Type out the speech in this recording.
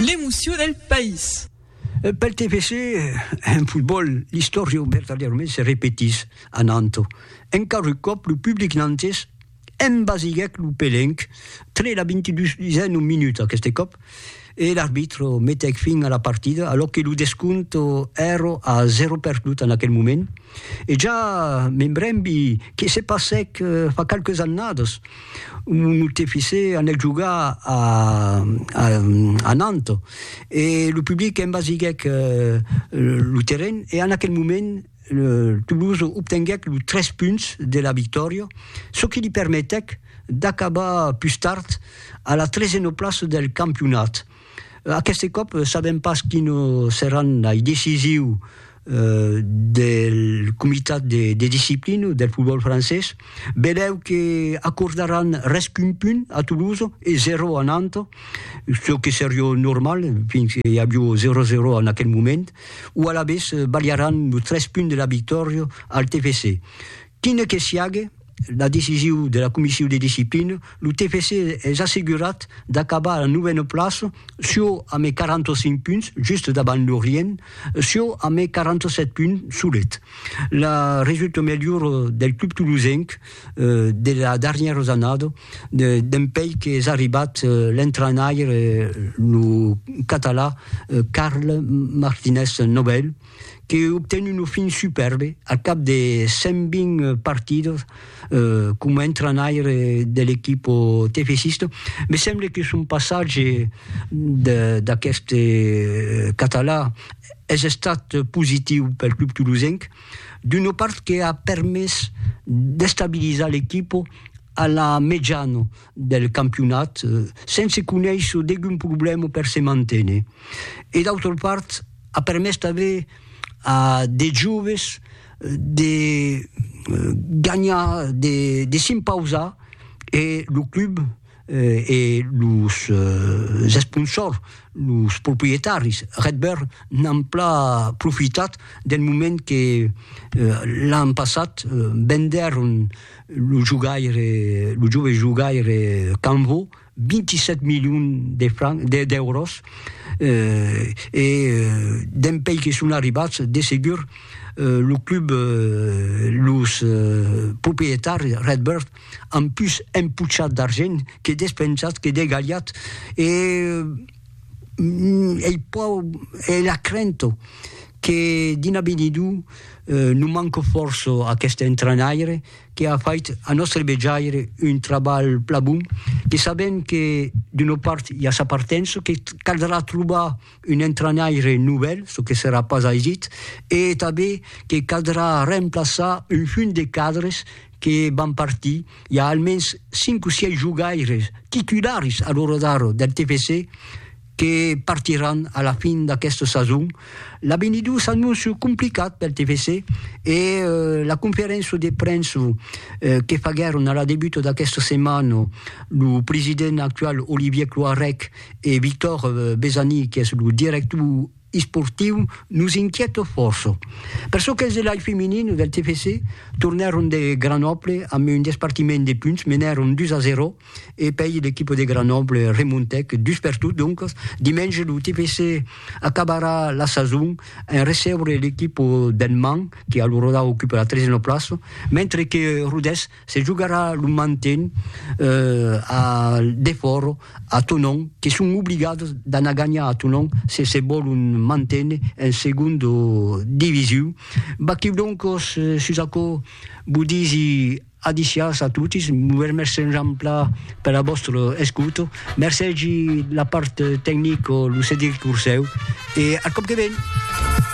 L'emoció del país. Pel TFC, en fotbòl, l'istòria vertadièrament se repetís a Nanto. Encara un còp, lo public nantés embasiguèc lo pelenc tre la 22n minuta, aqueste còp, e l'arbitro metèc fin a la partida, alò que lo descòmpte èra a 0 perdut en aquel moment. E ja me brembi que se passèc fa qualques annadas, mon oncle fissé anèc jogar a a Nantes e lo public envasiguèc lo terren e en aquel moment Toulouse obtenguèc los tres punts de la victòria, çò que li permetèc d'acabar pus tard a la tresena plaça del campionat. Aqueste còp sabèm pas quines seràn lei decisiu del comitat de disciplina del fotbòl francés. Belèu que acordaràn res qu'un punt a Toulouse e zero a Nantes, çò que serió normal fins que i avió zero a zero en aquel moment, o alavetz balharàn los tres punts de la victòria al TFC. Quine que siague la decisiu de la Comissiu de Disciplina, lo TFC es assegurat d'acabar a la novena plaça çò amé 45 punts, just davant Lorient, çò amé 47 punts solet. La resulta melhora del club tolosenc de la darnièra zannada, dempèi qu'es arribat l'entrenaire lo catalan Carles Martinez Nobel, que obten un ofin supèrbe al cap de 120 partidas coma entrainaire de l'equipa tefesista, me semble que son passatge d'aqueste català es estat positiu pel club tolosenc, d'una part que a permés d'estabilizar l'equipa a la mejana del campionat sense conéisser degun problèma per se manténer e d'autra part a permés tanben a de joves de ganhar de s'impausar e lo club e los esponsors los proprietaris Redbird n'an plan profitat del moment que l'an passat vendèron Lo jogaire, lo jove jogaire Canvo, 27 milions de francs, d'èuros, eh, e dempèi que son arribats, de segur, lo club, los proprietaris, Redbird, an pus empochat d'argent que despensat, que degalhat, e, ei pòur e la crènt que d'un avenidor non manco fòrça aqueste entrainaire que a fait a nòstre vejaire un trabalh plan bon, que sabem que d'una part i a sa partença, que caldrà trobar un entrainaire novèl, çò que serà pas aisit, e tanben que caldrà remplaçar un junt de cadres que van partir. i a almens cinc o sièis jogaires titularis a l'ora d'ara del TFC que partiràn a la fin d'aquesta sason. L'avenidor s'anóncia complicat pel TFC e la conferéncia de premsa que faguèron a la debuta d'aquesta setmana lo president actual Olivier Cloarec e Victor Besani qu'es lo director esportiu nos inquièta fòrça. Per çò qu'es de l'ai feminin del TFC, tornèron de Grenoble amb un despartiment de punts, menèron 2 a 0 e pèi l'equipa de Grenoble remontèc dus per tot, doncas dimenge lo TFC acabarà la sason en recebre l'equipa del Mans que a lo Roda ocupa la tresena plaça, mentre que Rodés Se jogarà lo manten a Defòro, a Tonon, que son obligados d'anar ganhar a Tonon se se vòlon manténer en segonda divisiu. Vaquiu doncos sus aquò, vos disi adiciàs a totis, vos remèrci enjamplà per la vòstra escota, mercegi la part tecnica lo Cedric Ursèu e ath còp que ven!